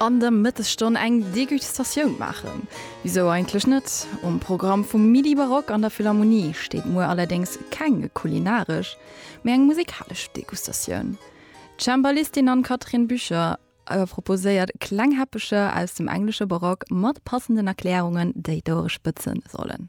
An der Mëttesstonn eng Degustatioun maachen? Wisou eigentlech net? Um Programm vum Midi Barock an der Philharmonie steet muer allerdéngs keng kulinaresch, mee eng musikalesch Degustatioun. D'Cembalistin Anne-Catherine Bücher proposéiert kleng Häppecher aus dem englesche Barock mat passenden Erklärungen, déi d'Ouere spëtzen sollen.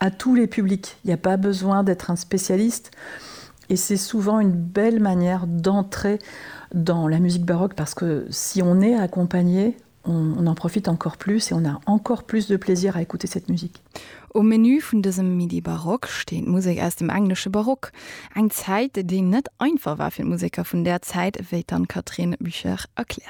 à tous les publics, il n'y a pas besoin d'être un spécialiste et c'est souvent une belle manière d'entrer dans la musique baroque parce que si on est accompagné, on, on en profite encore plus et on a encore plus de plaisir à écouter cette musique. Um Menu vun dësem Midi Baroque steet Musek aus dem englesche Barock, eng Zäit, déi net einfach war fir d'Museker vun där Zäit, wéi d'Anne-Catherine Buchert erkläert.